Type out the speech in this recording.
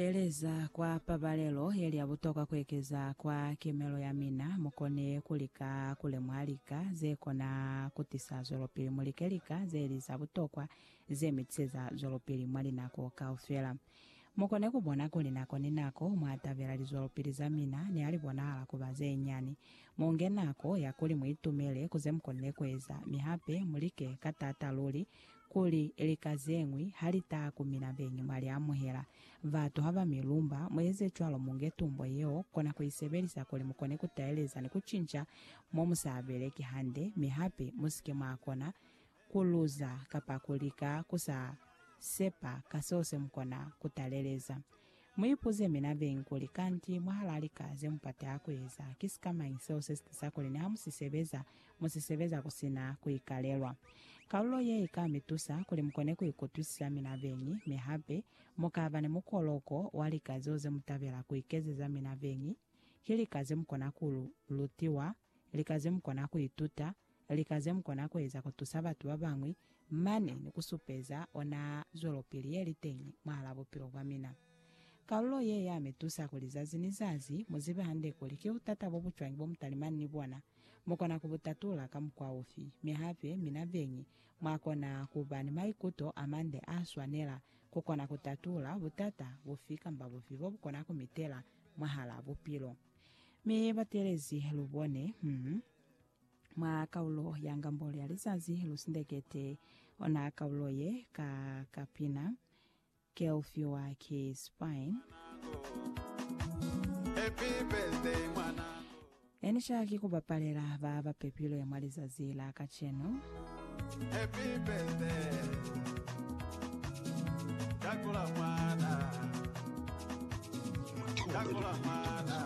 Kueleza kwa pabalelo yeli ya butokwa kuekeza kwa kimelo ya mina, mukone kulika kulemuha lika zekona kutisa zwelopili mu like lika zeli za butokwa ze mitiseza zwelopili mwa linako kaufela. Mukone kubona kuli nako ni nako mwatabela lizwelopili za mina nihali bonahala kuba zenyani. Munge nako ya kuli muitumele ku zemukonile kueza, mi hape mulike ka taata luli Kuli lika zeñwi halitaa ku mina beñi mwa liamuhela, batu haba mi lumba, mueze cwalo munge tumbo yeo, kona ku isebelisa kuli mukone ku taeleza ni ku cinca mo musaa beleki hande, mi hape musike mwa kona ku luza kapa ku lika ku sa sepa ka seo se mukona ku taleleza. Mu ipuze mina beñi kuli, Kanti mwahalaa lika ze mupati a ku eza, ki sikamañi seo se si tisa kuli niha mu si sebeza, mu si sebeza ku si na ku ikalelwa? Kalulo ye i ka mi tusa kuli mu kone ku ikutwisisa mina beñi, mi hape mu ka ba ni mukoloko wa lika zeo ze mu tabela ku ikezeza mina beñi. Ki lika ze mu kona ku lutiwa, lika ze mu kona ku ituta, Lika zemukona kueza kutusa batu babañwi mane ni kusupeza ona zwelopili yeliteñi mwahal'a bupilo bwamina. Kalulo ye yamitusa kuli zazi ni zazi muzibe hande kuli ki butata bobucwañi bomutalimani ni bona, mukona kubutatula ka mukwa ufi, mi hape mina beñi mwakona kuba ni maikuto amande aaswanela kukona kutatula butata bufi kamba bufi bobukona kumitela mwahal'a bupilo. Mi batelezi lubone, hum. Mwa kaulo ya ngambo lya lizazi lu sindekete ona kaulo ye ka kapina Kelfiwa ki Spine. Happy birthday mwanangu. Enisha ki kubapalela ba bapepilwe mwa lizazi la kacenu. Happy birthday. Dakula mwana. Dakula mwana.